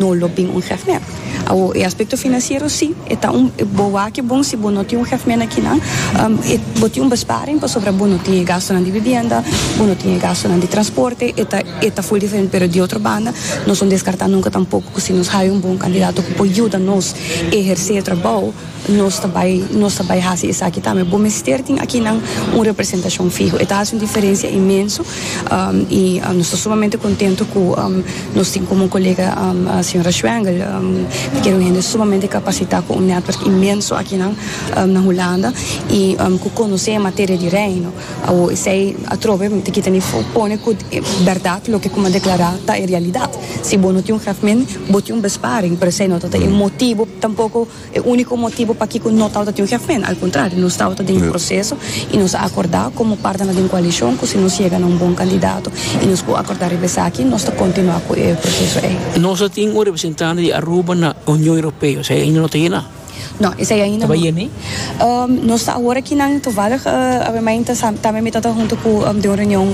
No lo bin un hefmé. Awor, e aspekto finansiero sí, e ta un, bo wak e bon si bo no tin un hefmé na kinan, e, bo tin un besparing pasobra bo no tin e gastonan di bibienda, bo no tin e gastonan di transporte, e ta, e ta full diferente. Pero di otro banda, nos no deskartá nunka tampoko ku si nos haya un bon kandidato ku por yuda nos ehersé e trabou, Nos ta bai, nos ta bai hasi esaki tambe. Bo mester tin akinan un representashon fiho. E ta hasi un diferensia inmenso i nos ta sumamente kontentu ku nos tin komo un kolega señora Schwengel ta kere un hende sumamente kapasitá ku un netwerk inmenso akinan na Hulanda i ku konosé e materia di Reino. Awo esei atrobe mi ta kita mi for pone ku bèrdat loke ku mi a deklará ta e realidat. Si bo no tin un grafmin, bo tin un besparing, pero esei no ta e motibu tampoko. E úniko motibu pakiko no tabata tin un hèf mènt, al kontrario, nos tabata den e proseso i nos a akordá komo partenan den koalishon ku si nos yega na un bon kandidato i nos por akordá riba esaki nos ta kontinuá ku e proseso ei. Nos a tin un representante di Aruba na Union Europeo, esei ainda no ta yená? No, esei ainda no. Ta bai yen'é? Nos ta awor aki nan toevallig Abemey ta sa tambe mi tabata hunto ku den un reunion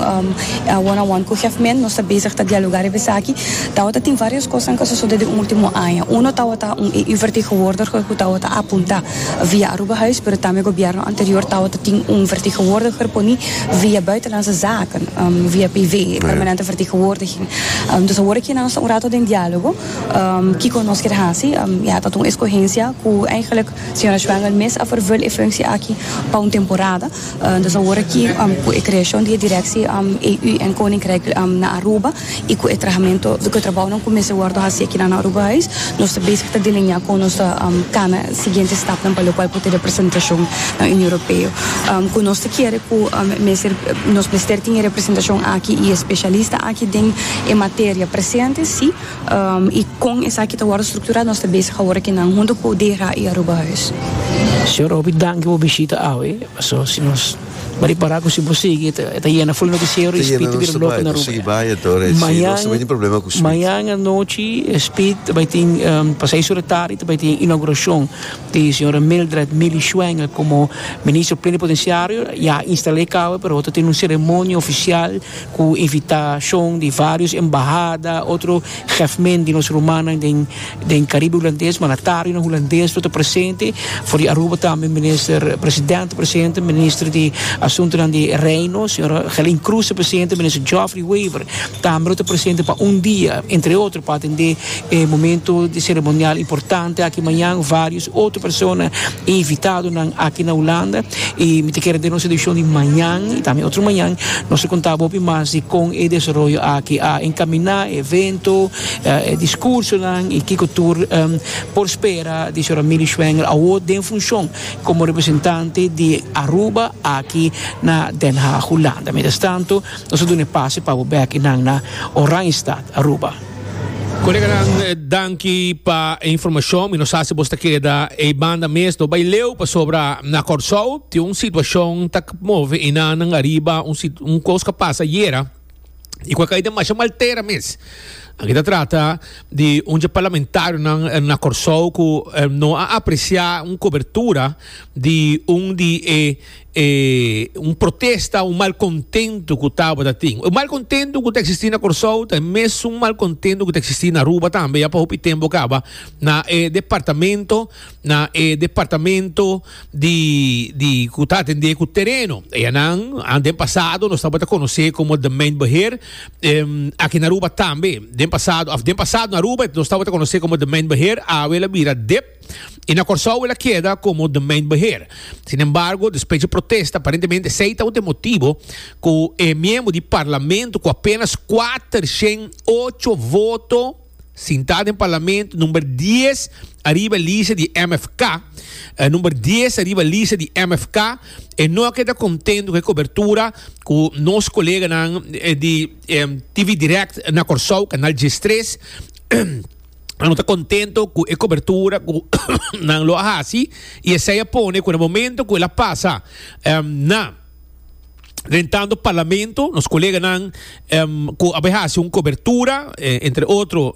one on one ku hèf mènt, nos ta bezig ta dialogá riba esaki. Tawata tin varios cosnan cu a sosode den ultimo aña. Uno tawata un EU-vertegenwoordiger cu tawata a punta via Aruba Huis pero tambe gobierno anterior tawata tin un vertegenwoordiger poni via Buitenlandse Zaken, via PV, Permanente Vertegenwoordiging. Dus awor aki nos ta un rato den dialogo kico nos kier haci. Ya ta ta un escogencia cu eigenlijk señora Schwengel mes a vervul e functie aki pa un temporada. Dus awor aki cu e creacion di e directie EU en Koninkrijk na Aruba. y cu e trahamentu, cu e trabounan cu mester wordo haci aki na na Aruba Huis, nos ta bezig ta delineá con nos ta cana e siguiente stapnan pa locual por ta e representacion na Union Europeo. Cu nos ta kere cu mester, nos mester tin e representacion aki y e specialista aki den e materia presente, si, y con esaki ta wordo structurá nos ta bezig awor aki nan hunto cu DHRA y Aruba Huis. Señor Hopi danki bo bishita awe, pasobra si nos Mari pará ku si bo sigui e ta yena ful no di sero i Speed ta bira loko na Aruba ya. Mañana mañana anochi Speed ta bai tin pa seis ora tardi ta bai tin inaugurashon di señora Mildred Milly Schwengel komo Minister Plenipotenciario ya a instal'é kabe pero ta tin un seremonia ofisial ku invitashon di vários embahada otro. Gevmen di nos rumannan den den Caribe Hulandes, mandatarionan Hulandes lo ta presente, for di Aruba tambe Minister Presidente ta presente, Minister di Asuntonan di Reino, Señora Gelin Croes ta presente, Minister Geoffrey Wever tambe lo ta presente pa un dia, entre otro, pa atende e momento di ceremonial importante aki mañan. Otro persona invitadonan aki na Hulanda y mi ta kere den nos edición di mañan y tambe otro mañan nos ta conta bo hopi mas di con e desaroyo aki a encamina, e evento, e discursonan y kico tur por spera di Sra. Milly Schwengel awor den funcion como representante di Aruba aki na Den Haag, Hulanda. Mientras tanto nos ta duna e pase pa bo bek y nan na Oranjestad, Aruba. Koleganan, danki pa e informashon. Mi no sa si bos ta keda ei banda mes. No bai leu pasobra na Kòrsou tin un situashon ta move inannan ariba un sit-, un kos ku a pasa ayera i ku a kai den masha maltera mes. Aki ta trata di un dje parlamentarionan na Kòrsou ku no a apresiá un kobertura di un di e. E un protesta, un malkontentu ku tabata tin. E malkontentu ku ta eksistí na Kòrsou ta e mesun malkontentu ku ta eksistí na Aruba tambe. Ya pa hopi tempu kaba na e departamento, na e departamento di di ku ta atendé ku tereno. Eyanan a den pasado nos tabata konosé komo Demeinbeheer em aki na Aruba tambe. Den pasado, òf den pasado na Aruba nos tabata konosé komo Demeinbeheer, awe el a bira dep. I na Kòrsou el a keda komo domeinbeheer. Sinembargo, despues dje protesta, aparentemente esei tabata e motibo ku e miembro di parlamento ku apenas kuater shen ocho voto sinta den parlamento number dies ariba e lista di MFK, number dies ariba lista di MFK, e no a keda kontento ku e kobertura ku nos koleganan di TV Direct na Kòrsou, kanal djes tres, Anu ta contento cu e cobertura cu nan lo a haci y esey a pone cu na momento cu el a pasa na rentando Parlamento nos coleganan cu a bay haci un cobertura, entre otro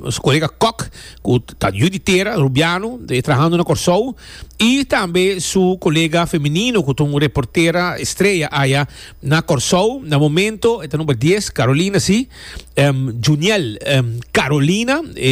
nos colega Kok cu ta yu di tera, Rubiano, trahando na Corsou y tambe su colega femenino cu ta un reportera estrella aya. Na Kòrsou, na momento, e ta number dies, Carolina, sí. Em, Juniel, em, Carolina, e.